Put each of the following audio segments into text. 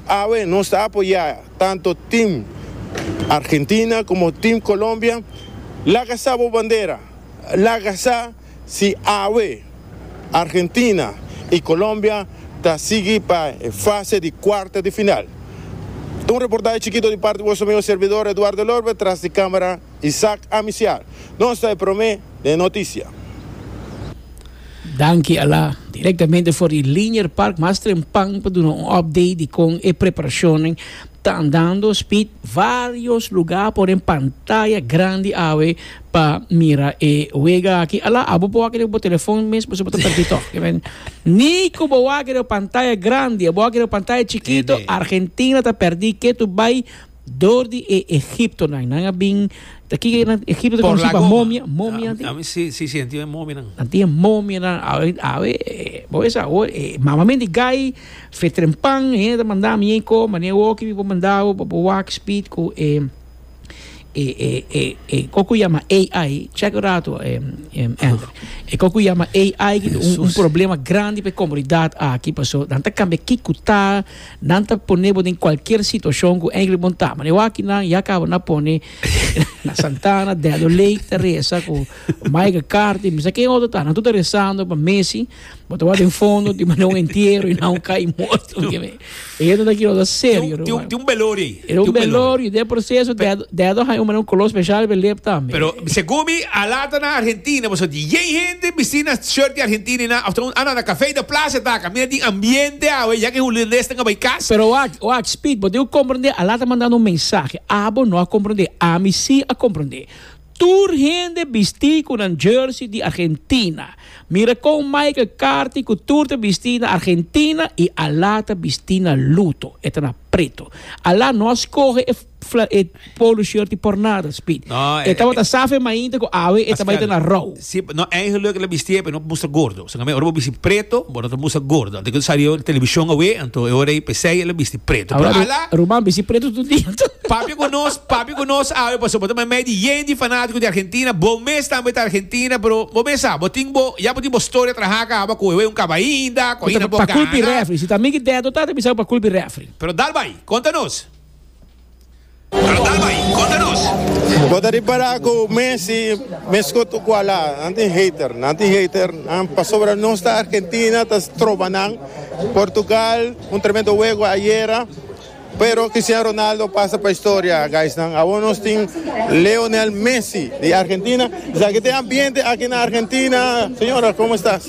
Awe nos ta apoyá tanto tim Argentina komo tim Kolombia. Laga sa bo bandera. Laga sa si awe Argentina i Kolombia ta sigui pa e fase di kuarto di final. Un reportahe chikito di parti boso mi un serbidor Eduardo Lorber tras di kámara. Isaac Amisiar nos ta e prome den e noticia. Danki Ala, direktamente for di Linier Park mas trempan pa duna un update di kon e preparashonnan ta andando spit varios luga por den pantaya grandi awe pa mira e wega aki Ala abo por wak den bo telefon mes pasobra bo ta perdi tok ni ku bo wak den bo pantaya grandi abo wak den bo pantaya chikito Argentina ta perdi ketu bai Dor di e egiptonan. Nan a bin, ta kiko e egipto ta konosi pa momia, momianan tin. Ami si, si, si, nan tin e momianan. Nan tin e momianan, awe, awe, bo wes awor, e mamamen di gai, fetrempan, hende ta manda mi ei ko, mane woki mi por manda bo pa bo wak spit ku e, e, e, e, e kos ku yama AI, chek un rato e, e Ander, e kos ku yama AI, un, un problema grandi pa e komunidat aki, paso nan ta kambia kiko ta. Nan ta pone bo den cualkier situacion cu eindelijk bon ta. Mane waki nan ya caba na pone na Santana, Dado Lake ta reza cu Michael Carter y mi sa ken otro ta. Nan tur ta rezando pa Messi. Bo ta wak den fondo dimane un entiero y nan cay morto. Eyen ta taki lo ta serio. Tin un beloria ayi. E un belor y den proceso dedo hay un manera un color special pe lip tambe. Pero segun mi a lata na Argentina bo sa dien hende bisti na shirt di Argentina y na after un anda na cafe y na plaza e taca mira di ambiente awe ya que Hulandes tan a bay cas. Pero wak wak Speed bo tin cu comprende a lata manda un mensahe abo no a comprende ami si a comprende. Tur hende bisti ku nan jersey di Argentina. Mira kon Michael Carthy ku tur ta bisti na Argentina i Alá ta bisti na luto, e ta na preto. Alá no a skohe e e polo shirti por nada, Speed. E tabata sa fe mainta ku awe e ta bai ta na rou. Si no eigenlijk la bistié p'e no mustra gordo. Esaki ta ora bo bisti preto, bo no ta mustra gordo. Anto ku sali e televishon awe, anto e ora ei p'esei el a bisti preto. Pero ala! Ruman bisti preto tur dia anto. Papia ku nos, papia ku nos awe pasobra bo ta mei mei di yen di fanatiko di Argentina. Bo mes tambe ta Argentina, pero bo mes sa, bo tin bo, ya bo tin bo storia traha kaba ku ewe un kaba ainda, ku ainda no por gana. Pa kulpa e refri. Si ta mi ku Dedo ta, ta bisa ku pa kulpa e refri. Pero dal bai, konta nos. Bo ta ripara ku Messi meskos tu ku ala nan tin hater, nan tin hater nan pasobra nos ta Argentina ta troba nan. Portugal un tremendo wego ayera pero Cristiano Ronaldo pasa pa historia guysnan. Awor nos tin Leonel Messi di Argentina. Esaki ta e ambiente aki na Argentina señora? Komo estas?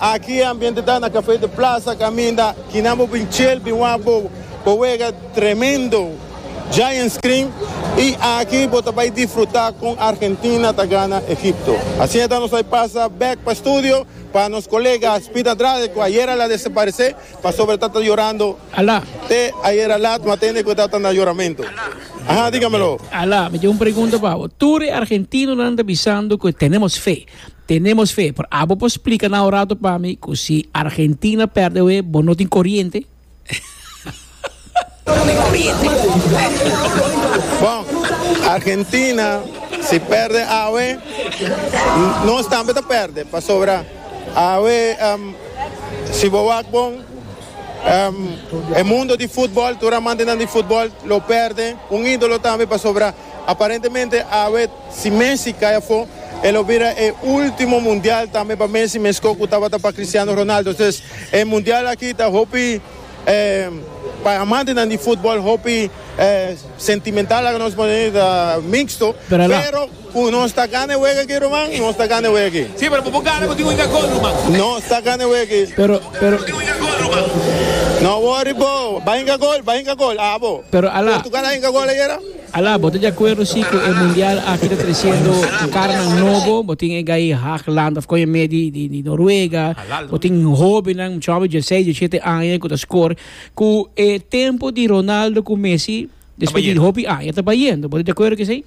Aki e ambiente ta na Café de Plaza caminda kinan bo bin chel bin wak bo bo wega tremendo giant screen y aki bo ta bay disfruta con Argentina ta gana Egipto. Asieta nos bay pasa back pa studio pa nos colega Speed Andrade cu ayer al a desaparece pasobra ta ta yorando te ayer a lat ma tende cu ta ta na yoramento. Aha digamelo. Ala mi tin un pregunta pa bo tur e argentinonan ta bisando cu tenemos fe. Tenemos fe, pero abo por splica na un rato pa mi cu si Argentina perde oe bo no tin coriente? Bon, Argentina si perde awe, nos tambe ta perde, pasobra awe si bo wak bon e mundo di futbol, tur amantenan di futbol lo perde un idolo tambe pasobra. Aparentemente awe si Messi kai afó e lo bira e último mundial tambe pa Messi meskos ku tabata pa Cristiano Ronaldo. Entonces e mundial aki ta hopi pa e amantenan di futbòl hopi sentimental laga nos pone ta mixto, pero ku nos ta gana e wega aki ruman nos ta gana e wega aki. Sí, pero bo por gana ku tin un inga gol ruman. Nos ta gana e wega aki. Pero, pero. No worry bo, bai inga gol, bai inga gol, abo. Pero ala. Portugal a inga gol ayera? Ala, bo ta di akuerdo si ku e mundial aki ta tresiendo karanan nobo? Bo tin e Guy Hageland of kon e me di di Noruega, bo tin hobennan, mucha hoben dieseis, diesiete aña ku ta skor ku e tempu di Ronaldo ku Messi despues di hopi aña ta bayendo. Bo ta di akuerdo ku esei?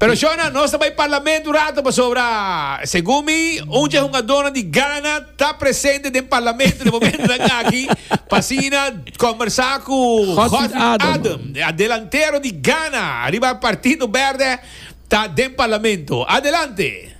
Pero shona, nos ta bai parlament un rato pasobra segun mi un dje hungadornan di Ghana ta presente den parlamento den momentonan aki pa asina kombersá ku Godfried Adem, e delantero di Ghana riba Partido Berde ta den parlamento. Adelante!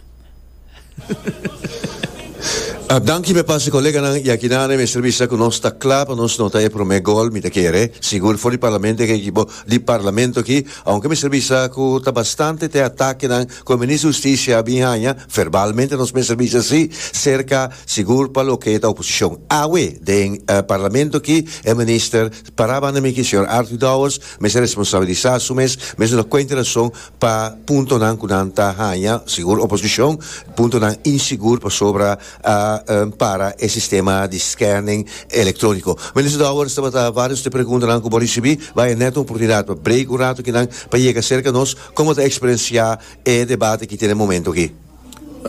A danki mi a pasa koleganan i aki nan e mester bisa ku nos ta kla pa nos nota e promé gol mi ta kere sigur for di parlamento e ekipo di parlamento aki ounke mester bisa ku ta bastante te atakenan ku e minister hustisia a bin haña ferbalmente nos mester bisa si serka sigur pa loke ta oposishon awe den parlamento aki e minister para banda mi aki señor Arthur Dowers mester responsabilisa su mes mester dor kuenta rason Pa puntonan cu nan ta haña, sigur oposicion, puntonan insigur pasobra a para e sistema di scanning electronico. Minister Dowers, tabata varios t'e preguntanan cu bo ricibi. Bai e net un oportunidad pa brega un rato aki nan pa yega cerca nos. Como ta experiencia e debate aki te den momento aki?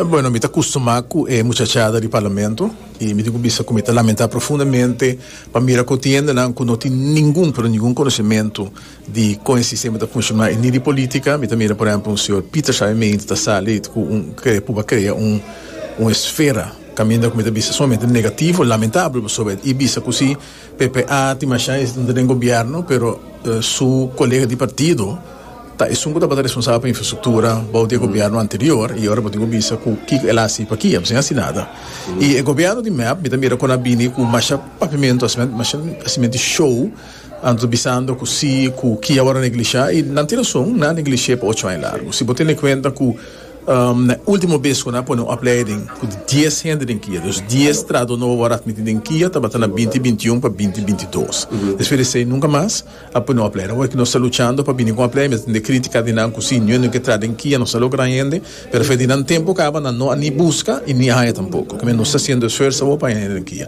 Bueno, mi ta custumá cu e muchachada di Parlamento y mi tin cu bisa cu mi ta lamentá profundamente pa mira cu tin hendenan cu no tin ningun, pero ningun conocimento di con e sistema ta funciona y ni di politica. Mi ta mira, por ehemplo, un señor Pieter Schaimeind ta sali cu un kere puba crea un un esfera caminda cu mi ta bisa sumamente negativo, lamentable, pasobra e bisa cu si, PPA tin masha estudiante den gobierno pero su colega di partido ta esun cu tabata responsabel pa infrastructura bou di e gobierno anterior y ora bo tin cu bisa cu kico el a haci paki abo sin haci nada y e gobierno di mep mi ta mira con a bini cu masha papiamento masha hacimenti show anto bisando cu si cu ki awor a negligia y nan tin razon nan a negligie pa ocho aña largo si bo tene cuenta cu Na e ultimo bes cu nan a pone un opleiding cu dies hende den kia, dus dies trahador nobo a word admiti den kia tabata na binti binti un pa binti binti dos. Despues di esey nunca mas a pone un opleiding. Awor cu nos ta luchando pa bini cu un opleiding mester tende critica di nan cu si niun den cu e traha den kia no sa lo gran hende, pero efectivo nan tempo caba nan no a ni busca y ni a haya tampoco. Kimes nos ta haciendo esfuerzo awor pa haya hende den kia.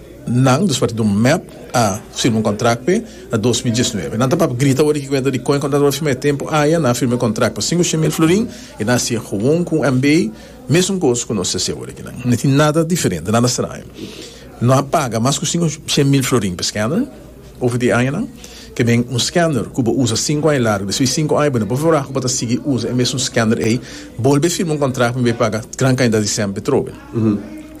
Nan, despues di un mep, a firma un contract pe na dos mil diesnuebe. Nan ta papia grita ora ki cuenta di con e contrato a firma. E tempo aya nan a firma e contract pa cinco cien mil florin y nan a sigue gewoon cu MB. Mesun cos cu nos ta haci ora aki. Nan no tin nada diferente, nada straño. No a paga mas cu cinco cien mil florin pa e scanner. Over di añanan ke men un scanner ku bo usa sinku aña largu, despues di sinku aña bo no por verá ku bo ta sigui usa e mesun scanner ei, bolbe firma un kontrakt pa mi bay paga gran kantidat di sènte betrobe.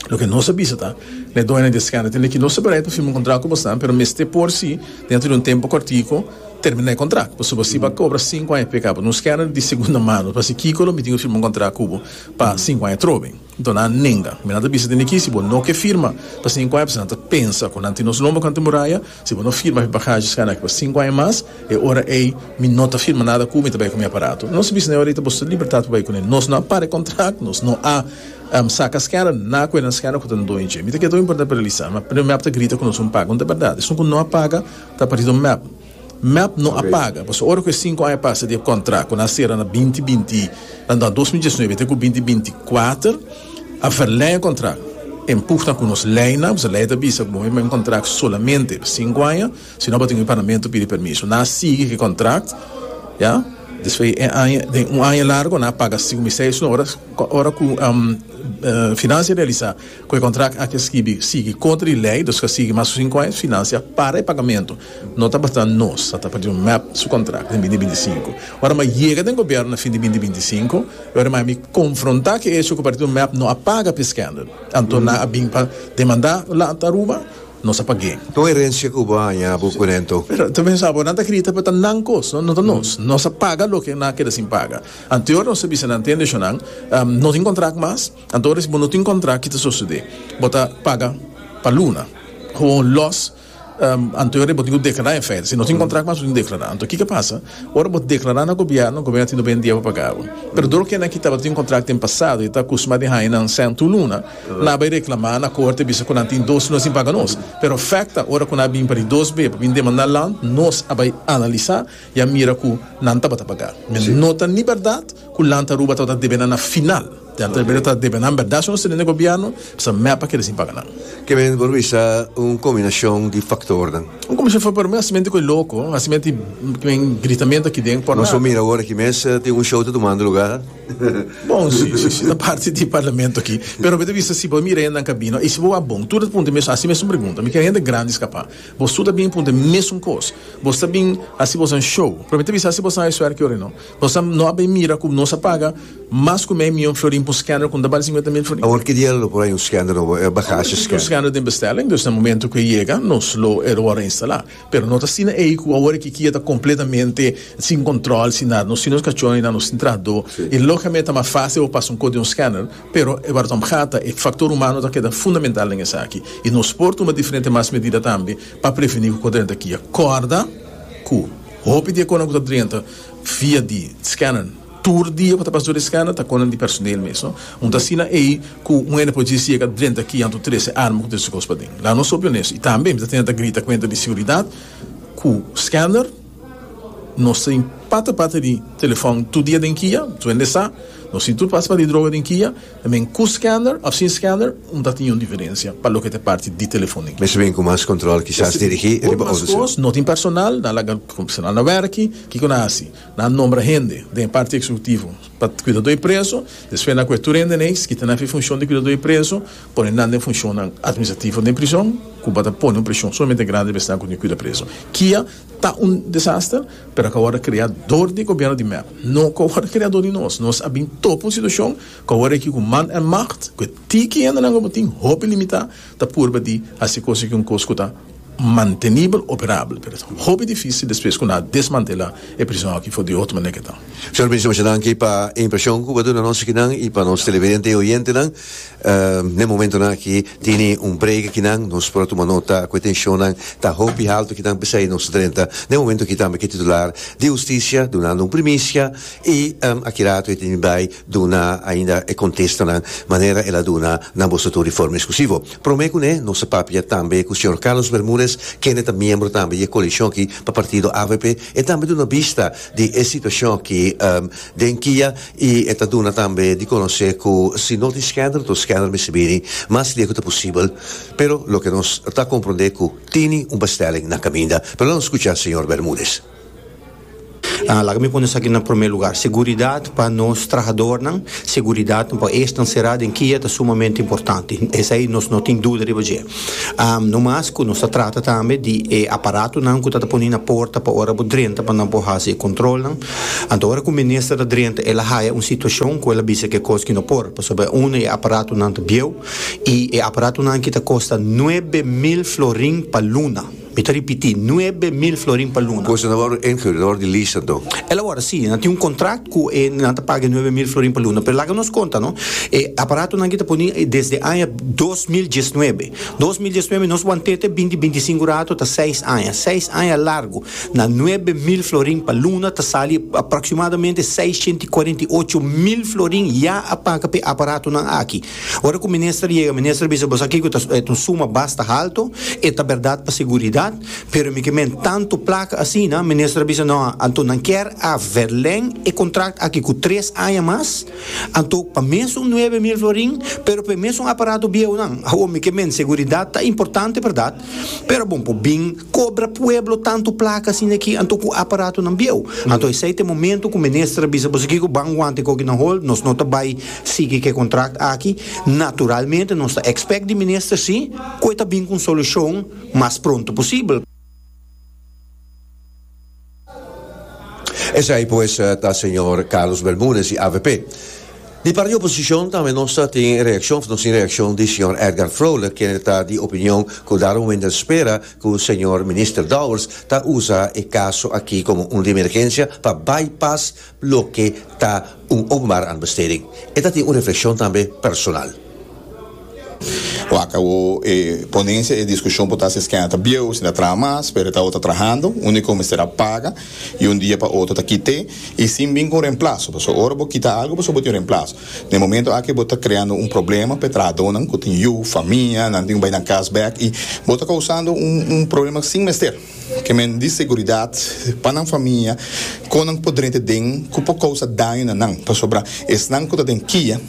Loke nos a bisa ta, na e doño di e scanner tende ki no sta bereid pa firma un kontrakt ku bosnan, pero mester por si dentro di un tempu kòrtiku terminá e kontrakt, pasobra bo siba kobra sinku aña p'e kaba. Na un scanner di segunda mano, pa hasi kiko lo mitin pa firma un kontrakt ku bo pa sinku aña trobe? Nton nan nenga. Mi nan ta bisa den aki, si bo no ke firma pa sinku aña, p'esei nan ta pensa ku nan tin nos lomba kanta muraya, si bo no firma afe bagashi skada aki pa sinku aña mas, e ora ei mi no ta firma nada ku mi ta bai ku mi aparato. Nos ta bisa, na e ora ei ta boso libertat pa bai ku nan. Nos no a para e kontrakt, nos no a saka skada na ku e nan skada ku ta den doño dje. Mi ta keda tabata importante pa realisa, mi ap ta grita ku nos un paga, unda berdad esun ku no a paga ta parse don mi ap. Mep no a paga, pasobra ora ku e sinku aña pasa di e kontrá ku nan sera na binti binti, ta na dos mil diesnuebe te ku binti binti kuater, a verlèng e kontrá en pugna ku nos leinan, pasobra lei ta bisa ku bo firma un kontrá solamente pa sinku aña, si no bo tin ku e parlamento pidi permiso. Nan a sigui ku e kontrá, ya, despues di e aña, den un aña largu nan a paga sigu mi seis, ora ku finansia realisá. Ku e kontrakt aki a skibi sigui kontra di lei, nos ka sigui mas ku sinku aña finansia para e pagamentu. No ta basta nos a tapa di un mep su kontrakt den binti binti i sinku. Ora mi a yega den gobiernu na fin di binti binti i sinku, e ora mi a mi konfronta ku e echo ku parti di un mep no a paga pa e skendel. Anto nan a bin pa demanda lanta Aruba, nos a pag'é. Kon herensia ku bo a haña bo ku rento? Pero ta pensa bo nan ta grita pa ta nan kos, no ta nos. Nos a paga loke nan a keda sin paga. Anterior nos a bisa nan, Tende Shonan, no tin kontrakt mas. Anto res bo no tin kontrá ki ta sosodé bo ta paga pa luna hon lòs anto res bo tin ku deklará e fèt si no tin kontrá mas bo tin deklará anto kiko pasa ora bo deklará na gobièrnu gobièrnu tin dobe un dia pa paga bo pero tur okina ki tabata tin kontrá den pasado e ta akusmá di haña nan sèntu luna nan a bai reklamá na korte bisa ku nan tin dos luna sin paga nos pero fèt ta ora ku nan a bin pa di dos be pa bin demandá land nos a bai analisá i a mira ku nan tabata paga mi no ta ni bèrdat ku land ta ruba tabata debe nan na final. Te atrebe ta debe nan berdad su no sali den gobierno, sa mep a kere sin paga nan. Ke men por bisa un kombinashon di faktornan. Un kombinashon di faktornan, men hasimente koe loko, hasimente men gritamento aki den por nada. Nos por mira awor aki mes tin un show ta tumando luga. Bon, si, si, si, ta parti di parlamento aki. Pero mi ta bisa si bo mira hende nan kabina i si bo a bon, tur nan ta puntra mesun, hasi mesun pregunta, mi kere hende grandi skapa, bos tur ta bini puntra mesun kos, bos ta bini hasi bosan show? Pero mi ta bisa hasi bosan e suerki oren'o. Nos a no a bay mira cu nos a paga mas cu mei mion florin pa un scanner cu no ta bali cincuenta mil florin. Awor kidia lo por hay un scanner nobo? E ba haci scanner. Awor existe un scanner den bestelling, dus na momento cu e yega nos lo e lo a reinstala. Pero no ta asina ey cu awor e kikia ta completamente sin control, sin nada. Nos tin nos cachona y nan nos tin trahado y logicamente ta mas facil pa bo pasa un cos den un scanner, pero e wardom gata, e factor humano ta keda fundamental den esaki y nos por tuma diferente mas medida tambe pa preveni cu cos drenta kia. Corda cu hopi di e conan cu ta drenta. Via di scanner. Tur dia cu ta pasa tur e scanner ta conan di personeel mes, no? Un ta asina ey cu un hende por djis yega drenta ki anto trece arma cu tin su cos paden. Laga nos hopi honesto. Y tambe mi ta tenta grita cuenta di seguridad cu scanner nos tin pata pata di telefon tur dia den kia. Su hende sa nos tin tur pasa pata di droga den kia. I mean, cu scanner of sin scanner no ta tin niun diferencia pa loke ta e parti di telefonia. Mester bini cu mas control, kisas dirigi riba otro ciudad. No tin personal, nan a laga personal na werki, kico nan a haci? Nan a nombra hende den e parti executivo pa cuida dor di preso, despues nan a coge tur hende na ey, kita nan fen funcion di cuida dor di preso, pone nan den funcionnan administrativo den prison, cu bo ta pone un presion sumamente grandi riba esnan cu tin cuida preso. Kia? ta un desaster, pero a kawòrda krea dor di gobièrnu di mep. No kawòrda krea dor di nos. Nos a bin topa un situashon ku awor aki ku man en magt, ku e tiki hendenan ku bo tin hopi limitá, ta purba di hasi kos aki un kos ku ta mantenibel, operabel, pero ta hopi difísil despues ku nan a desmantelá e prison aki for di otro manera ke ta. Señor Minister, mucha danki pa e impreshon ku bo a duna nos akinan i pa nos televidente i oyentenan. N'e momentonan aki tini un brega ki nan nos por a tuma nota ku e tenshonnan ta hopi haltu kinan p'esei nos ta drenta n'e momento aki tambe ku e titular di hustisia dunando un primisia i aki rato e tene bai duna ainda e kontestanan manera el a duna na boso tur di forma eskusivo. Promé kuné nos a papia tambe ku señor Carlos Bermudez kende ta miembro tambe di e koalishon aki pa partido avp e tambe duna bista di e situashon aki den kia I e ta duna tambe di konosé ku si no tin skèner to skèner mester bini mas lié ku ta posibel, pero loke nos ta komprondé ku tini un bèstèling na kaminda. Pero la nos skucha señor Bermudez. A Laga mi pone esaki na promé lugar. Seguridat pa nos trahadornan, seguridat pa esnan será den kia ta sumamente importante. Esei nos no tin duda riba dje. A No mas ku nos ta trata tambe di e aparatonan ku ta ta poní na porta pa ora bo drenta pa nan por hasi e kontrolnan. Anto ora ku minister ta drenta el a haya un situashon ku el a bisa ke kos ki no por, pasobra uno e aparatonan ta bieu i e aparatonan ki ta kosta nuebe mil florin pa luna. Mi ta ripití, nuebe mil florin pa luna. Kos nan a wòrdu inhurd, nan a wòrdu di lease anto? El a wòrdu si, nan tin un kontrakt ku e nan ta paga e nuebe mil florin pa luna. Pero laga nos konta no, e aparatonan ki ta poní desde aña dos mil diesnuebe. Dos mil diesnuebe nos wantete binti binti i sinku ratu ta seis aña. Seis aña largu. Na nuebe mil florin pa luna ta sali aproximadamente seis ciento y cuarenta y ocho mil florin ya a paga pa e aparatonan aki. Ora cu minister yega, minister a bisa, Bo sa kico ta e ta un suma basta halto, e ta berdad pa seguridad, pero mi ke men tanto placa asina, minister a bisa, No, anto nan kier a verleng e contract aki cu tres aña mas, anto pa mesun nuebe mil florin, pero pa e mesun aparato biehonan. Awor mi ke men seguridad ta importante berdad, pero bo por bin, Kobra pueblo tantu plaka asina aki anto ku aparatonan bieu. Anto esei ta e momento ku minister a bisa boso kiko ban wanta e kokinan hol, nos no ta bai sigui ku e kontrakt aki. Naturalmente nos ta ekspèkt di minister si ku e ta bin ku un solushon mas pronto posibel. Esei pues ta señor Carlos Bermudez di avp. Di parti di oposicion tambe no sa tin reaccion of no sin reaccion di señor Edgar Vrolijk kende ta di opinion cu Darwin Wendell spera cu señor Minister Dowers ta usa e caso aki como un di emergencia pa bypass Loke ta un openbare aanbesteding? E ta tin un reflekshon tambe personal. Waka bo e ponencia e discusion por ta si es kenda ta bieu o si ta traha mas pero ta otro trahando unico mester a paga y un dia pa otro ta kite y sin bin cu un remplazo pasobra ora bo kita algo pasobra bo tin un remplazo den e momento aki bo ta creando un problema pa e trahadonan cu tin yu famia nan tin cu bay nan cas bek y bo ta causando un un problema sin mester. Ke men di seguridat pa nan famia kon nan por drenta den ku por kousa daño na nan, pasobra esnan ku ta den kia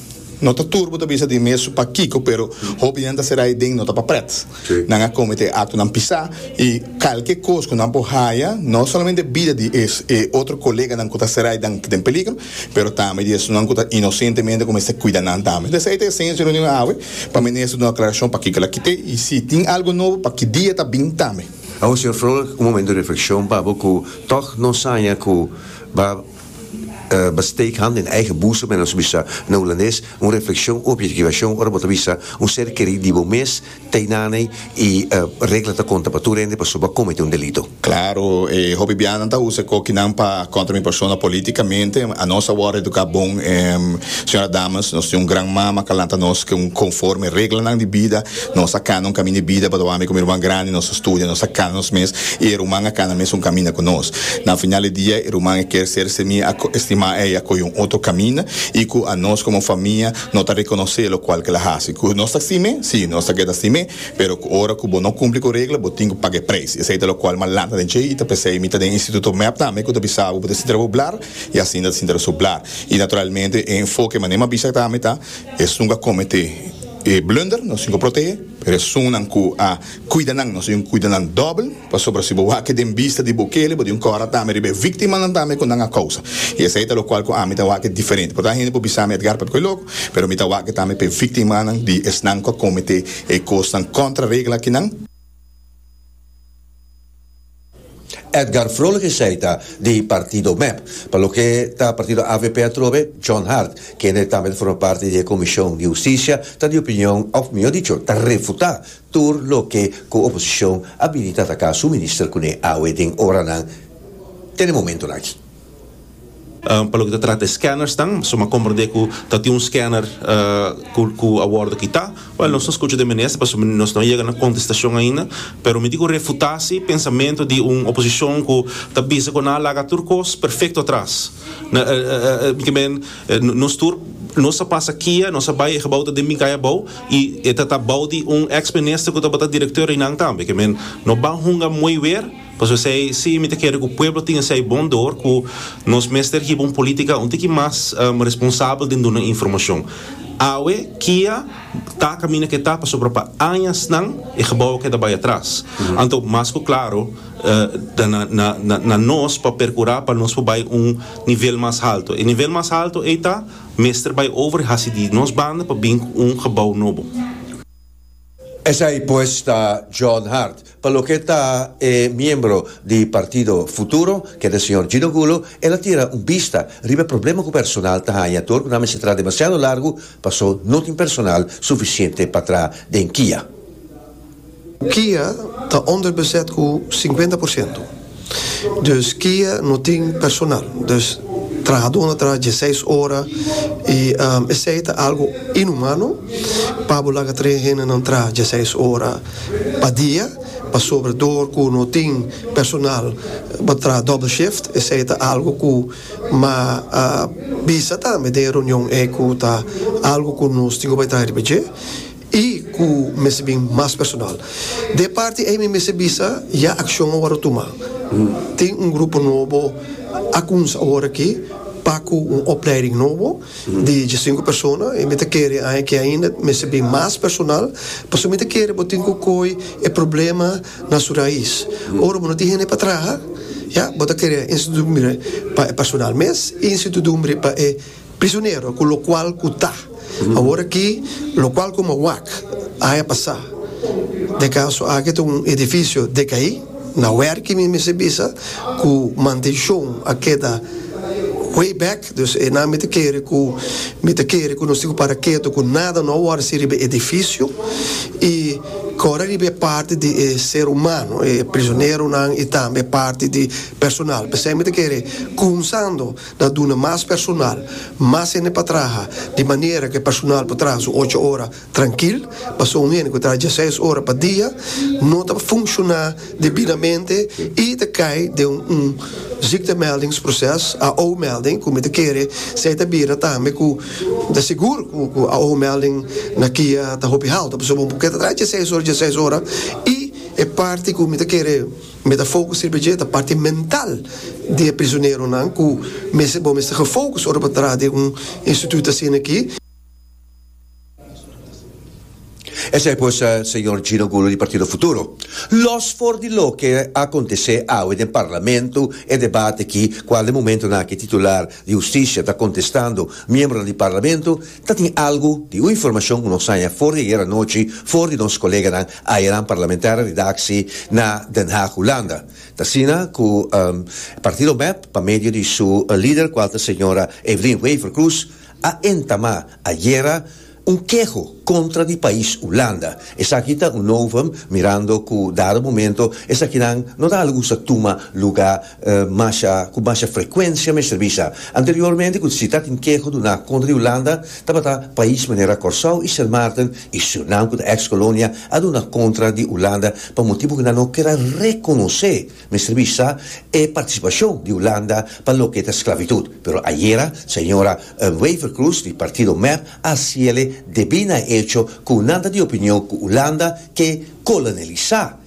no ta tur bo ta bisa di mes pa kiko pero hopi di nan ta sera den no ta pa prèt. Nan a kometé aktonan pisá i kalke kos ku nan por haya no solamente bida di e otro koleganan ku ta sera dan den peligro pero tambe di esnan ku ta inosentemente ku mester kuida nan tambe. Esei ta esencia di reunion awe. Pa Minister duna aclaracion pakico el a kite y si tin algo nobo pa ki dia ta bin tambe. Awor Señor Vrolijk un momento di reflexion pa bo cu toch no saña cu bo a steek hand den eigen boezem men a su bisa na Hulandes un reflexion u objetivacion ora bo ta bisa un ser keri di bo mes teinaney E regla ta konta pa tur hende pasobra bo a komete un delito. Klaro, e hopi bianan ta usa e kokinan pa kontra mi persona polítikamente. Anos a wòrdu eduká bon, señora dames. Nos tin un gran mama ku a lanta nos ku konforme reglanan di bida. Nos a kana un kaminda di bida pasobra ami ku mi ruman grandi nos a studia, nos a kana nos mes i e ruman a kana mes un kaminda ku nos. Na final di dia e ruman a kier ser semí, a estimá ei, a kohe un otro kaminda i ku anos komo famia, No ta rekonosé lokual ke el a hasi. Ku nos ta sim'é? Sí, nos ta keda sim'é, pero ku ora ku bo no kumpli ku regla bo tin ku paga e preis. Esei ta lokual m'a lanta den dje i ta p'esei mi ta den instituto mep tambe ku ta bisa bo bo ta sinti raboblar i asinda ta sinti rasublar. I naturalmente e enfoke manera m'a bisa tambe ta esun ku a kometé e blunder nos tin ku proteh'é, pero esunnan ku a kuida nan nos tin ku kuida nan dòbel. Pasobra si bo wak den bista di bo kele, bo di un kòrda ta ami riba e víktimanan tambe ku nan a kousa. I esei ta lokual ku ami ta wak diferente. Por ta hende por bisa mi Edgar papia ku e loko, pero mi ta wak tambe pa e víktimanan di esnan ku a kometé e kosnan kontra regla akinan. Edgar Vrolijk esei ta di partido mep. Pa loke ta partido avp atrobe, John Hart, kende tambe ta forma parti di e komishon di hustisia, ta di opinion òf mihó dicho ta refutá Tur loke cu oposicion a bini ta ataca su minister cune awe den oranan te na momentonan aki. Pa loke ta trata e scannersnan, suma a comprende cu ta tin un scanner cu a wordo kita. Wel, nos ta scucha den minister pasobra nos no a yega na contestacion ainda, pero mi tin cu refuta si pensamento di un oposicion cu ta bisa cu nan a laga tur cos perfecto atras. Nos tur nos a pasa kia, nos a bay e gebouw ta den bin cay abao. Y e ta ta bou di un ex minister cu tabata director Renan tambe. Ke men no ban hunga moe weer, pasobra esey si mi ta kere cu pueblo tin esey bon door cu nos mester hiba un politica un tiki mas responsabel den duna informacion. Awe kia ta caminda ke ta pasobra pa añasnan e gebouw a keda bay atras. Anto mas cu claro ta na na na nos pa percura pa nos por bay un nivel mas halto. E nivel mas halto ey ta. mester bai over hasi di nos banda pa bin ku un gebou nobo. Esei pues ta John Hart. Pa loke ta e miembro di partido Futuro, ke ta señor Gino Gulo, el a tira un bista riba e problema ku personal ta haña tur ku nan mester traha demasiado largu paso no tin personal sufisiente pa traha den kia. Kia ta onderbezet cu cincuenta por ciento. Dus kia no tin personal. Dus trahador na traha dieseis ora y esey ta algo inhumano pa bo laga tres hendenan traha dieseis ora pa dia pasobra door cu no tin personal bo traha double shift. Esey ta algo cu ma bisa tambe den e reunion ey cu ta algo cu nos tin cu bay traha riba dje. I ku mester bin mas personal. Den e parti ei mi mester bisa ya akshon a wòrdu tumá. Tin un grupo nobo a kumsa aworakí pa ku un opleiding nobo di djasinku persona i mi ta kere aña ke ainda mester bin mas personal pasobra mi ta kere bo tin ku koi e problema na su rais. Ora bo no tin hende pa traha, ya, bo ta kere institudumbre pa e personal mes i institudumbre pa e. Prisonero cu locual cu ta. Awor aki locual cu mawak a haya pasa den caso aki ta un edificio decai na werki mi mester bisa cu mantencion a keda way back dus e nan mi ta kere cu mi ta kere cu nos tin cu para keto cu nada no a worse riba e edificio y kora riba e parti di e ser humano e prisoneronan y tambe e parti di personal pesey mi ta kere cunsando. ta duna mas personal, mas hende pa traha, di manera ku e personal por traha su ocho ora trankil, pasobra un hende ku traha diaseis ora pa dia no ta funshoná debidamente i ta kai den un ziektemeldingsproces, AO-melding, ku mi ta kere esei ta bira tambe ku ta sigur ku AO-melding na kia ta hopi haltu, pasobra un pokere ta traha diaseis ora, diaseis ora i e parti ku mi ta kere. Metafokus sirbi dje ta parti mental di e prisioneronan ku mester bo mester gefokus ora bo ta traha den un instituut asin'aki. Esei pues, señor Gino Gulu di Partido Futuro. Los for di loke a kontesé awe den Parlamento, e debate aki, kual den momentonan aki titular di Hustisia ta kontestando miembronan di Parlamento, Ta tin algu di un informashon ku nos haña for di ayer anochi for di nos koleganan ayanan parlamentario di daksi na Den Haag, Hulanda. Ta asina ku Partido mep, pa medio di su lider kual ta señora Evelyn Wever-Croes, a entamá ayer un keho kontra di pais Hulanda. Esaki ta un novum mirando ku dado momento esakinan no ta a lugusa tuma lugá. masha ku masha frekuensia mester bisa. Anteriormente ku si ta tin keho duná kontra di Hulanda tabata pais manera Kòrsou i Sint Maarten i Surinam ku ta eks kolonia a duna kontra di Hulanda pa motibu ku nan no keda rekonosé mester bisa e partisipashon di Hulanda pa loke ta sklavitut pero ayera señora Wever-Croes di partido mep a siele debí na e echo ku nan ta di opinion ku Hulanda ke kolonialisá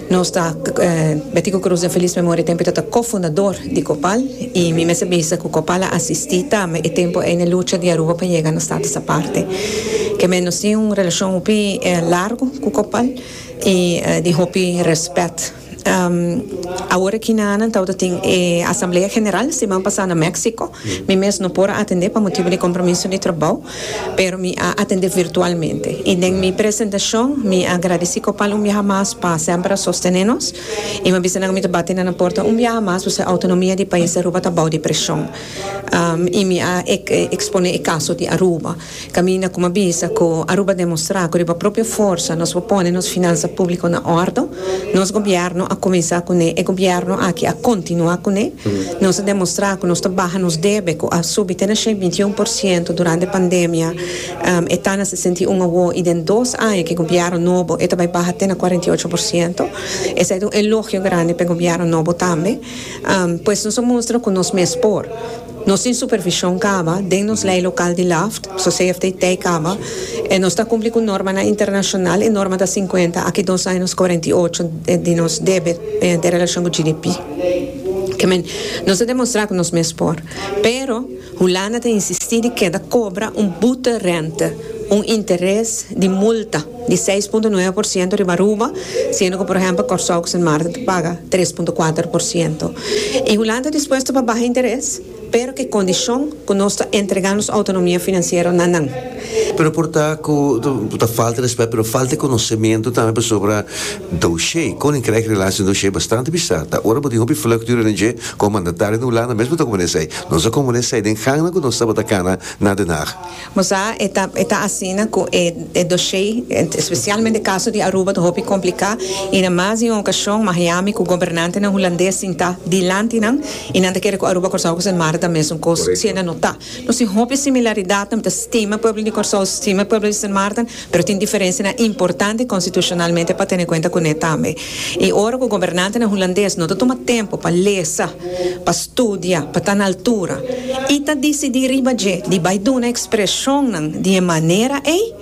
Nos ta Betico Cruz den feliz memoria tempo e ta ta co-fundador di Copal y mi mester bisa cu Copal a asisti tambe e tempo ey na e lucha di Aruba pa yega na status aparte. Kemey nos tin un relacion hopi largo cu Copal y di hopi respet. Awor aki na nan tawata tin e asamblea general siman pasa na Mexico. Mi mes no por a atende pa motibo di compromiso di trabao pero mi a atende virtualmente y den mi presentacion mi a gradeci Copal un biaha mas pa semper a sostene nos y mi a bisa nan cu mi ta bati na nan porta un biaha mas pasobra autonomia di pais di Aruba ta bou di presion y mi a expone e caso di Aruba caminda cu mi a bisa cu Aruba a demostra cu riba propio forsa nos por pone nos finansa publico na ordo. Nos Gobierno a cuminsa cu ne, e Gobierno aki a continua cu ne. Nos a demostra cu nos ta baha nos debe cu a subi te na shei binti un por ciento durante pandemia, e ta na sesenta i un awo y den dos aña cu e Gobierno nobo e ta bay baha te na cuarenta i ocho por ciento. Esey ta un elogio grandi pa e Gobierno nobo tambe. Pues nos a mustra cu nos mes por. Nos tin supervision caba den nos ley local di Laft, so CFTT caba e nos ta cumpli cu normanan internacional, e norma ta cincuenta aki dos aña nos cuarenta y ocho di nos debet den relacion cu GDP. Ke men nos ta demostra cu nos mes por. Pero Hulanda ta insisti di keda cobra un boete rente, un interes di multa. di seis punto nuebe por siento riba Aruba, siendo cu por ehempel Corsou cu Sint Maarten ta paga tres punto kuater por siento. Y Hulanda ta dispuesto pa baha interes, pero ke condicion cu nos ta entrega nos autonomia financiero na nan. Pero por ta cu ta falta respet, pero falta e conocemento tambe pasobra doshé, Koninkrijk Relaties en Doshé, bastante bizar ta. Ora bo tin hopi vlucht dura den dje, como mandatario den Hulanda mes bo ta componé esei. Nos a componé esei den gangnan cu nos tabata cana na Den Haag. Nos a e ta e ta asina cu e e doshé, especialmente e caso di Aruba ta hopi complicá y na mas di un ocasion Miami cu gobernantenan Hulandes sintá dilanti nan y nan ta kere cu Aruba, Corsou cu Sint Maarten ta mesun cos, siendo no ta. Nos tin hopi similaridadnan, mi ta stima pueblo di Corsou, stima pueblo di Sint Maarten. Pero tin diferensianan importante konstitushonalmente pa tene kuenta kuné tambe. I ora ku gobernantenan hulandes no ta tuma tempu pa lesa, pa studia, pa ta na altura i ta disidí riba dje di bai duna ekspreshonnan di e manera ei,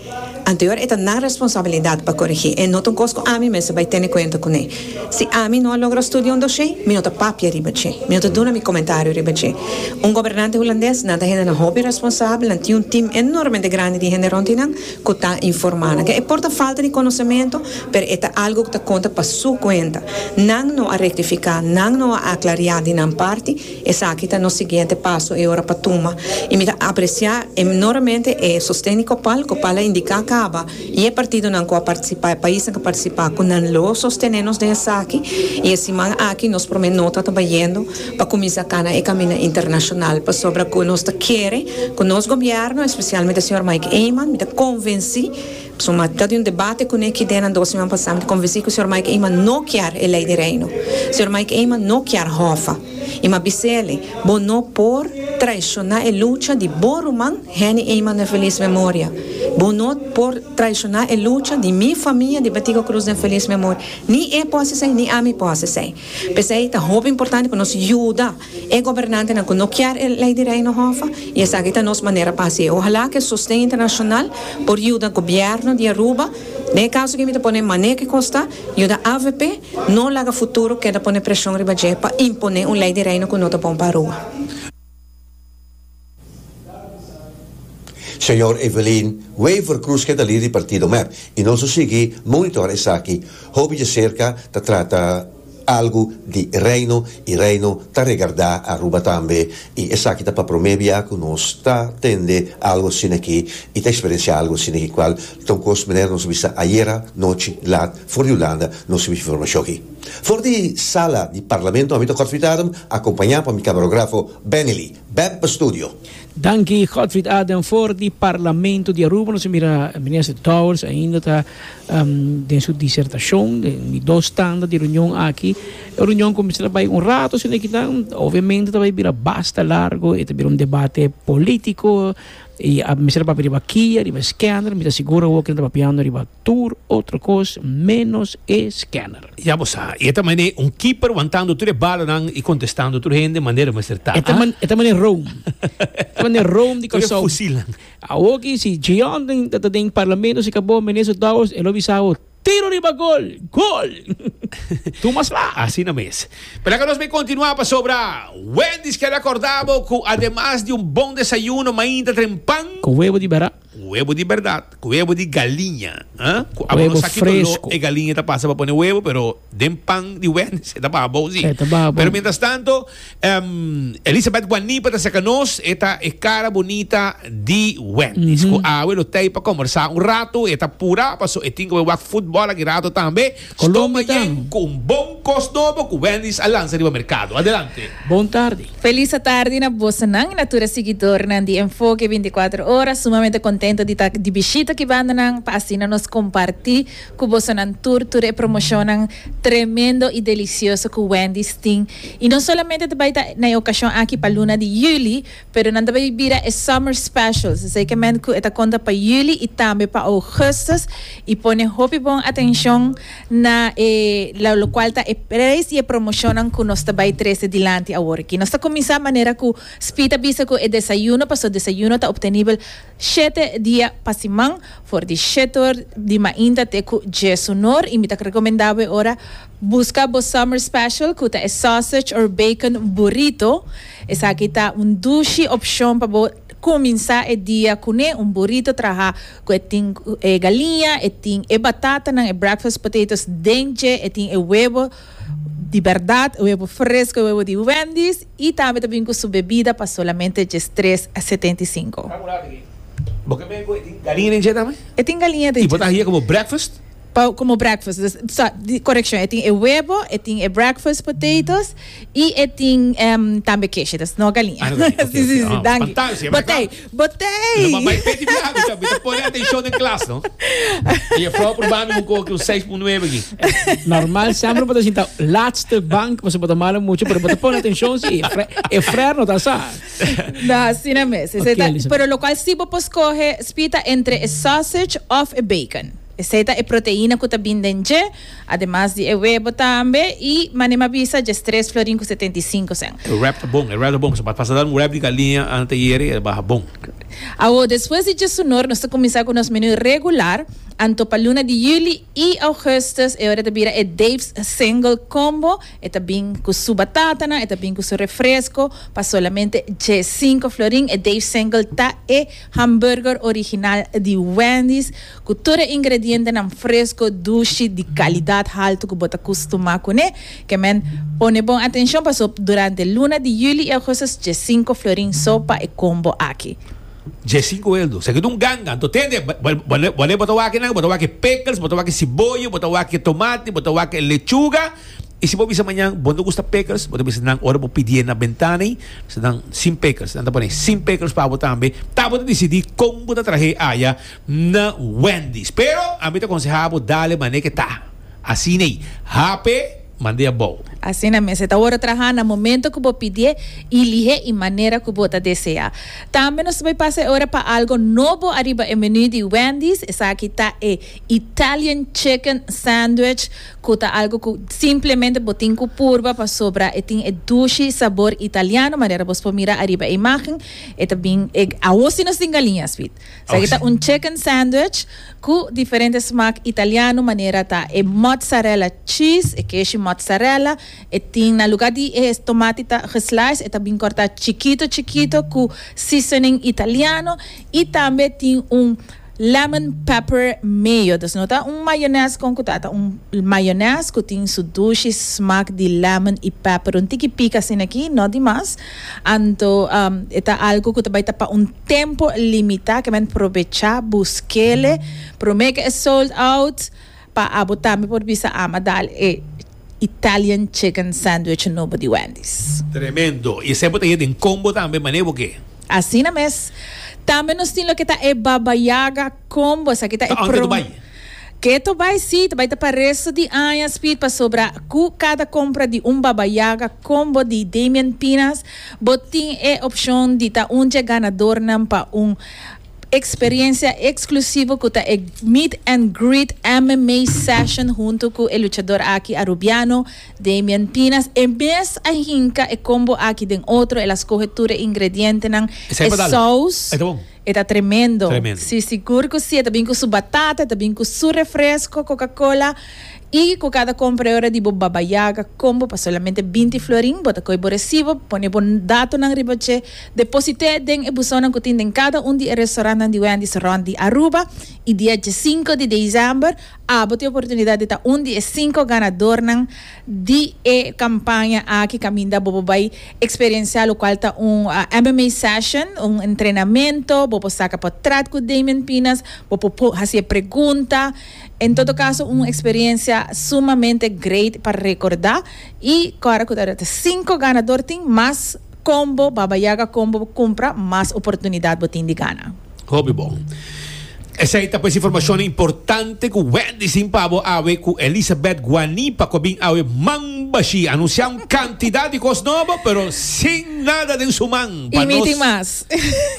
anteor e ta nan responsabilidat pa korigí. E no ta un kos ku ami mester bai tene kuenta kuné. Si ami no a logra studia un dosé, mi no ta papia riba dje. Mi no ta duna mi komentario riba dje. Un gobernante hulandes, nan ta hendenan hopi responsabel, nan tin un tim enormemente grandi di hende rond di nan ku ta informá nan. Ke e por ta falta di konosementu, pero e ta algu ku ta konta pa su kuenta. Nan no a rektifiká, nan no a aklariá di nan parti, esaki ta nos siguiente paso e ora pa tuma. I mi ta apresiá enormemente e sosten di Copal. Copal a indiká kaba. I e partidonan ku a partisipá, e paisnan ku a partisipá, ku nan lo sostené nos den esaki. I e siman aki nos promé nota ta bayendo pa kuminsá kana e kaminda internashonal pasobra ku nos ta kere ku nos gobièrnu, espesialmente señor Mike Eman, mi ta konvensí, pasobra mi a ta di un debate kuné ki den nan dos siman pasá, mi ta konvensí ku señor Mike Eman no kier e Lei di Reino. Señor Mike Eman no kier Hòfa. I mi a bis'é alí, Bo no por traishoná e lucha di bo ruman Henny Eman den Feliz Memoria. Bo no por traishoná e lucha di mi famia di Betico Cruz den Feliz Memoria. Ni e por haci esei, ni ami por haci esei. P'esei ta hopi importante pa nos yuda e gobernantenan cu no kier e Ley di Reino Hoffa y esaki ta nos manera pa haci. Ohalá cu e sosten internacional por yuda Gobierno di Aruba, den e caso aki mi ta pone Mané kikos ta, yuda avp no laga futuro keda pone presion riba dje pa imponé un Ley di Reino cu no ta bon pa Aruba. Señor Evelyn Wever Cruz ke ta lider di partido mep y nos lo sigui monitora esaki hopi dje cerca ta trata algo di Reino y Reino ta regarda Aruba tambe y esaki ta pa prome bia cu nos ta tende algo asina aki y ta experiencia algo asina aki cual ta un cos manera nos a bisa ayera nochi laat for di Hulanda nos a bisa informacion aki. For di sala di Parlamento ami ta Godfried Adam, akompañá pa mi kamerografo Benelli, Beb pa studio. Danki Godfried Adam. For di Parlamento di Aruba nos a mira Minister Dowers ainda ta den su disertashon den di dos tanda di reunion aki. E reunion kuminsá ta bai un rato asina kinan, obviamente ta bai bira basta largo, e ta bira un debate polítiko i a mester papia riba kia, riba skender, mi ta sigur awor ku nan ta papiando riba tur otro cos menos e scanner. Ya bo sa, y e ta mane un keeper wantando tur e balonan y contestando tur hende manera mester ta. E ta man, e ta mane Rome. E ta mane Rome di Tur e Curaçao. fusilnan. Awoki si Gianten ta ta den Parlamento si cabo Minister Dowers e lo bisa bo, Tiro riba gol! Gol! Tur mas la. Asina mes. P'esaki nos bay continua pasobra Wendy's quiere acorda bo cu ademas di un bon desayuno mainta tren pan. Cu huevo di bera. Un webo di berdad, ku webo di galiña, ha? Ku abo no sa ki doló e galiña ta pasa pa pone webo, pero den pan di wènèss e ta baha bon, sí. Pero mientras tanto, Elisabeth Guanipa ta serka nos, e ta e kara bunita di wènèss, ku awe lo tei pa kòmbersá un ratu, e ta purá paso e tin ku e wak futbòl aki ratu tambe. Colombia ta yen cu un bon cos nobo cu Wendy's a lanza riba mercado. Adelante. Bon tardi. Felis atardi na bosonan y na tur e siguidornan di Enfoke binticuatro Ora. Sumamente contento di ta di bishita cu bandanan pa asina nos comparti cu bosonan tur tur e promocionnan tremendo y delicioso cu Wendy's tin. Y no solamente ta bay ta na e ocasion aki pa luna di juli, Pero nan ta bay bira e summer specials, esey kemen cu e ta conta pa juli y tambe pa augustus y pone hopi bon atencion na e lo lo cual ta e prijs y e promocionnan cu nos ta bay trece dilanti awor aki. Nos ta cuminsa manera cu Spy ta bisa cu e desayuno, pasobra desayuno ta obtenibel shete dia pa siman for di shete or di mainta te cu djesunor y mi ta recomenda bo e ora Busca bo summer special cu ta e sausage or bacon burrito. Esaki ta un dushi opcion pa bo cuminsa e dia cune, un burrito traha cu e tin e galiña, e tin e batatanan, e breakfast potatoes den dje, e tin e webo di berdad, e webo fresco, e webo di Wendy's y tambe ta bin cu su bebida pa solamente djes tres setenta y cinco. Bo ke mey cu e tin galiña den dje tambe? E tin galiña den dje. Y bo ta haya como breakfast? Pa como breakfast dus sa correccion e tin e huevo e tin e breakfast potatoes y e tin em tambe keshi dus no galinha Ah, oké, si si oké. si Ah, danki fantasia, maar botei ka- Lo botei mamá e peti biaha mi ta mi ta pone atencion den klas no. E jefrouw proba mi un koe aki un seis punto nueve aki. Normal semper bo ta sinta laatste bank pasobra bo ta mala mucho pero bo ta pone atencion si e fre e frer no ta sa. No, asina mes. Esei Oké, ta, Lisabeth. pero locual si bo por scoge, Spita, entre e sausage of e bacon. Esei ta e proteina ku ta bin den dje, ademas di e webo tambe, i Manem a bisa, djes tres florin ku setenta i sinku sèn. E wrap ta bon, e wrap ta bon, pasobra pa pasa dal un wrap di galiña ante yere el baha bon. Awor, despues di djesunor, nos ta kuminsá ku nos menú regular, anto pa luna di yuli i ougùstùs e ora ta bira e Dave's Single Combo, e ta bin ku su batatanan, e ta bin ku su refresko, pa solamente dje sinku florin. E Dave's Single ta e hamburger original di Wendy's. Ku tur e ingredientenan fresco, dushi, di calidad halto ku bo ta custumá kuné, ke men pone bon atencion paso durante luna di juli i augustus dje cinco florin so pa e combo aki. Dje cinco heldu, sa ke ta un ganga. Anto tende, wale bo ta wak nan? Bo ta wak pickles, bo ta wak siboyo, bo ta wak tomati, bo ta wak lechuga. I si bo bisa mañan bo no gusta pickles, bo ta bisa nan ora bo pidié na bentana ei, se nan sin pickles. Nan ta pone sin pickles pa bo tambe. Ta bo ta disidí kon bo ta trahe aya. na Wendy's. Pero a mi ta conseha bo dale mane ke ta. Asina ei. Hape mand'e abou. Asina mes. E ta worde traha na momento ku bo pidié i lihé i manera ku bo ta deseá. Tambe nos ta bai pasa e ora pa algo nobo ariba e menú di Wendy's. Esaki ta e Italian Chicken Sandwich ku ta algo ku simplemente bo tin ku purba pasobra e tin e dushi sabor italiano manera bos por mira ariba e imágen. E ta bin, awor si nos tin galiña, Sweet. Esaki ta un chicken sandwich cu diferente smaak italiano manera ta e mozzarella cheese, e keshi mozzarella, e tin na lugar di e tomati ta geslice e ta bin corta chikito chikito cu seasoning italiano y tambe tin un lemon pepper mayo, dus no ta un mayones con cu ta ta un mayones cu tin su dushi smaak di lemon y pepper un tiki pik asina aki no di mas anto e ta algo cu ta bay ta pa un Tempo limita ke men probecha buskele prome ke e sold out pa abo tambe por bisa ama dal e Italian chicken sandwich nobo di Wendy's. Tremendo. Y esey bo ta ye den combo tambe, mane bo ke? Asina mes. Tambe nos tin loke ta e Baba Yaga. Con bo sa ki ta e prom. Ke to bai si ta bai ta pa resto di aña Speed pasobra cu cada compra di un Baba Yaga combo di Damian Pinas bo tin e opcion di ta un dje ganadornan pa un experiencia exclusivo cu ta e Meet and Greet MMA Session hunto cu e luchador aki Arubiano Damian Pinas e mes a hinca e combo aki den otro el a scoge tur e ingredientenan e saus E ta tremendo. Tremendo. Si, sigur cu si. E ta bin cu su batata, e ta bin cu su refresco, Coca-Cola, y cu cada compra e ora di bo Baba Yaga combo pa solamente binti florin. Bo ta coge bo recibo, pone bo datonan riba dje, deposit'é den e busonan cu tin den cada un di e restaurantnan di Wendy's rond di Aruba, y dia djesinco di december abo ta e oportunidad di ta un di e cinco ganadornan. di e kampaña aki kaminda bobo bai eksperensiá lokual ta un MMA session, un entrenamento, bo por saka pa trèt ku Damian Pinas, bo por por hasi e pregunta, en todo kaso un eksperensia sumamente great pa rekordá i kòrda ku ta sinku ganador tin mas kombo, Baba Yaga Kombo, bo kumpra mas oportunidat bo tin di gana. Hopi bon. Esei ta pues informacionnan importante cu Wendy sin pa bo awe cu Elisabeth Guanipa cu a bin awe man bashi. A anuncia un cantidad di cos nobo pero sin nada den su man pa nos. Y mi tin mas.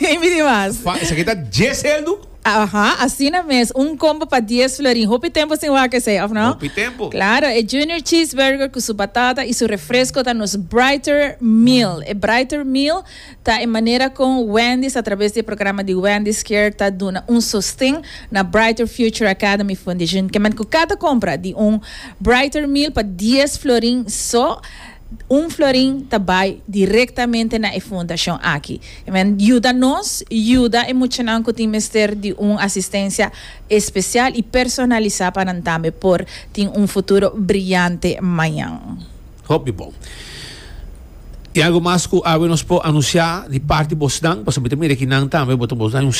Y mi tin mas. Pa esaki ta dies heldu? Aha, asina mes. Un combo pa dies florin. Hopi tempo sin wak esei, of no? Hopi tempo. Claro, e Junior Cheeseburger cu su batata y su refresco ta nos Brighter Meal. E Brighter Meal. Ta e manera con Wendy's a traves di e programa di Wendy's Care ta duna un sosten na Brighter Future Academy Foundation. Kement cu cata compra di un Brighter Meal pa dies florin so, un florin ta bay directamente na e fundacion aki. Kement yuda nos yuda e muchanan cu tin mester di un asistencia especial y personalisa pa nan tambe por tin un futuro briante mañan. Hopi bon. I algo mas ku awe nos por anunsiá di parti bosnan, pasobra mi ta mira ki nan tambe bo ta bos dai un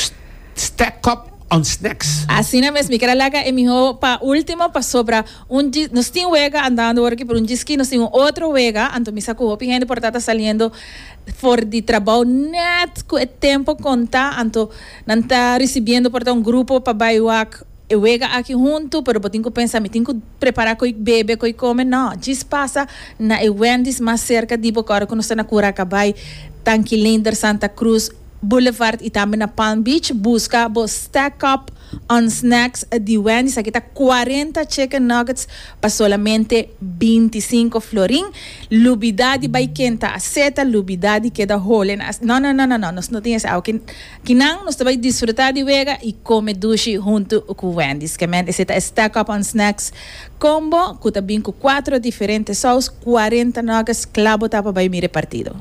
stack up on snacks. Asina mes, mi keda laga e mihó pa último pasobra un dji, nos tin wega andando ora ki por un djiskí, nos tin un otro wega, anto mi sa ku hopi hende por ta ta saliendo for di trabou nèt ku e tempo kontá, anto nan ta risibiendo por ta un grupo pa bai wak E wega aki huntu, pero bo tin ku pensa mi tin ku prepara koe bebe, koe kome. No, djis pasa na e Wendy's mas serka di bo ku ora ku nos ta na Curacabai, Tanquilinder, Santa Cruz Boulevard i tambe na Palm Beach, buska bo Stack Up on Snacks di Wendy's. Aki ta cuarenta chicken nuggets pa solamente binti sinko florin. Lubida di bai kenta a seta, lubida di keda hole na a. No, no, no, no, no, nos no tin esei awe. Kinan nos ta bai disfruta di wega i kome dushi huntu ku Wendy's. Kèmen esei ta e Stack Up on Snacks Combo ku ta bin ku kuatro diferente sous, kuarenta nuggets kla bo ta pa bai mira e partido.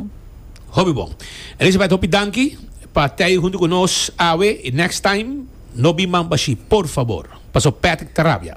Hopi bon. Elizabeth hopi danki pa tei huntu ku nos awe i next time no bin man pa shi por fabor, paso Patrick ta rabia.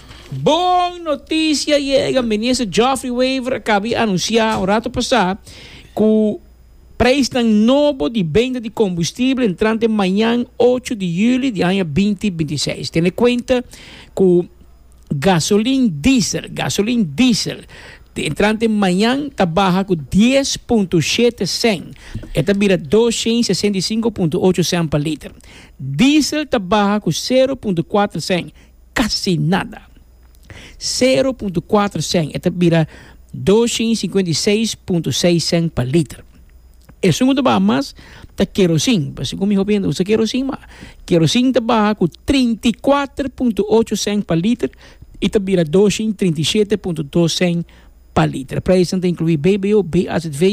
Bon notisia yega! Minister Geoffrey Wever a kabia anunsiá un ratu pasá ku preisnan nobo di benda di kombustible entrante mañan ocho di juli di aña binti binti seis. Tene kuenta ku gasolin diesel, gasolin diesel, entrante mañan ta baha ku dies punto shete sèn, e ta bira dos shen i sesenta i sinku punto ocho sèn pa liter. Diesel ta baha ku sero punto kuater sèn, casi nada. Sero punto cuatro cent, e ta bira doshen i cincuenta i seis punto seis cent pa liter. Esun cu ta baha mas ta kerosin, pasobra cu mi hopi hende ta usa kerosin, ma kerosin ta baha cu trinta i kuater punto ocho cent pa liter i ta bira doshen i trinta i shete punto dos cent. pa liter. Prijzen ta inkluí BBO, BAZV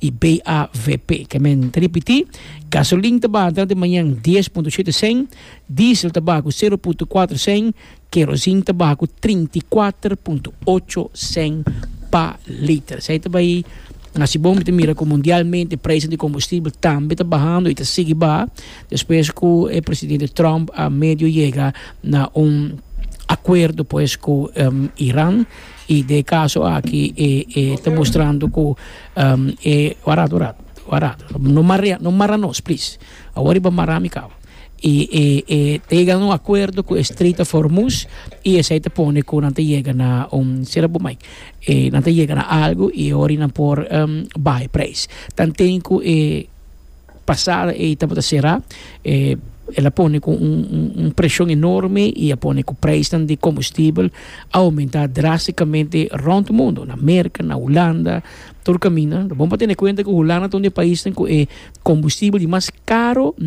i BAVP. Ke men ta ripití, gasolin ta baha durante mañan dies punto shete sèn, diesel ta baha ku sero punto kuater sèn, kerosin ta baha ku trinta i kuater punto ocho sèn pa liter. Esei ta bai hasi bon. Mi ta mira ku mundialmente prijzen di kombustibel tambe ta bahando i ta sigui baha despues ku e presidente Trump a medio yega na un akuerdo pues ku Iran. I den e kaso aki e e ta mustrando ku e warat warat warat no marea no mara nos plis awor riba mara mi kaw i e e ta yega na un akuerdo ku e Strait of Hormuz i esei ta pone ku nan ta yega na un sera bo mai e nan ta yega na algu i awor i nan por bai preis tanten ku e Pasada ei tabata será e el a pone cu un un presion enorme y a pone cu prijsnan di combustibel a aumenta drasticamente rond mundo na Merca na Hulanda tur caminda ta bon pa tene cuenta cu Hulanda ta un di e paisnan cu e combustibel di mas caro.